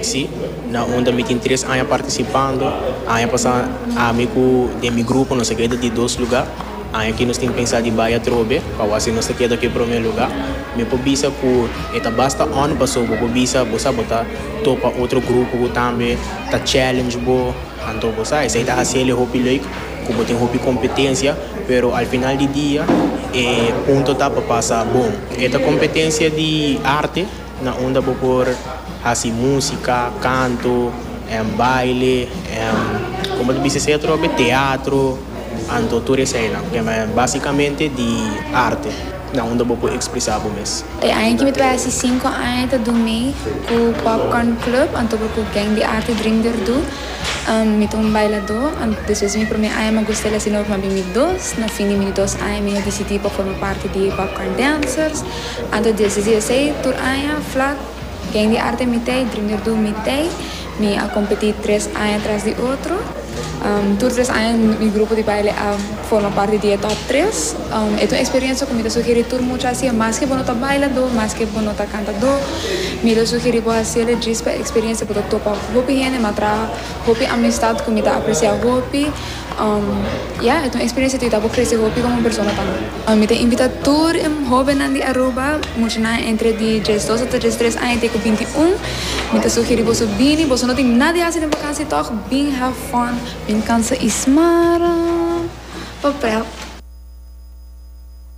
Si, na unda mi tin tres aña partisipando. Aña pasá ami ku den mi grupo nos a keda di dos lugá. Aña akí nos tin pensá di bai atrobe pa wak si nos ta keda ku e promé lugá. Mi por bisa ku e ta basta ònt pasobra bo por bisa bo sa bo ta topa otro grupo ku tambe ta challenge bo. Anto bo sa esei ta hasiel e hopi leuk ku bo tin hopi kompetensia, pero al final di dia e punto ta pa pasa bon. E ta kompetensia di arte. Na unda bo por hasi músika, kantu, en baile, en como ta bisa esei otro be teatro, anto tur eseinan ke men básikamente di arte na unda bo por ekspresá bo mes. E aña ki mi ta bai hasi sinku aña ta durmi ku Popcorn Club anto por ku Gang di Arte Dream Derdú. Mi ta un bailadó, despues di mi promé aña mi a gusta el hasi nobo, mi a bin mi dos. Na fin di mi dos aña mi a disidí pa forma parti di Popcorn Dancers. Anta diesis i esei tur aña flak Gen di Arte Mitei, Dreamer Doom Mitei, mi a kompetí tres aña tras di otro. Tur tres aña mi grupo di baile a forma parti di e top tres. E ta un eksperiensia ku mi ta sugerí tur mucha hasié maske bo no ta bailadó, maske bo no ta kantadó, mi ta sugerí bo hasié e djis pa eksperiensia bo ta topa hopi hende mi a traha hopi amistat ku mi ta apresiá hopi. Ya, e ta un eksperensia ku ta haña bo krese hopi komo persona tambe. Mi ta invitá tur e hóbennan di Aruba, muchanan entre di djes dos ata djes tres aña te ku binti un. Mi ta sugerí boso bini, boso no tin nada di hasi den bakansia tòg, bin have fun, bin kansa i smaran pa prèp.